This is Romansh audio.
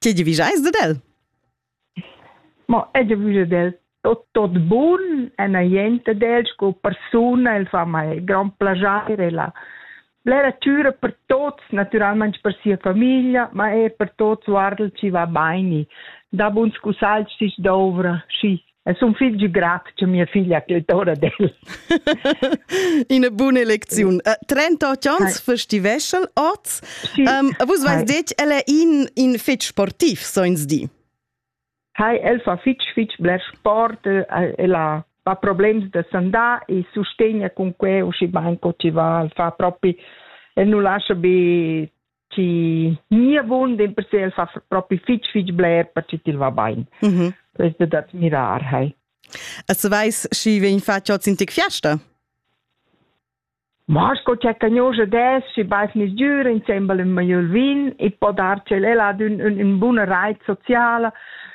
Tge giavisch eis dad el? Mo el giavisch dad el tot, tot bun en a jent ad el sco persuna, el fa mei grand plascher, el ha blera tgira per tots, naturalmein per sia famiglia, ma er per tots, guarda, schi va beini. Da buns cussagls schi s'dovra, schi Es un figl giù grat che mia figlia che è ora d'el. Ina buna lecziun. Uh, 38 ans festiveschel oz. Sì. Um, vus vais detg, el è in, in fitg sportiv, so ins di. Hai, el fa fitg, fitg bler sport, el ha ha problems da sandà e sustegna con que usci banco ti va, el fa proprio, el non lascia be chi ni abund in per se el fa propi fitch fitch bler per chi til va bain. Mhm. Mm Questo da admirar, hai. E se vais schi vegn fatg oz in tic fiasta? Vasco c'è cagnosa des si bais nis giura insembel in maiol vin e po darci el ad un, un, un buna reit sociala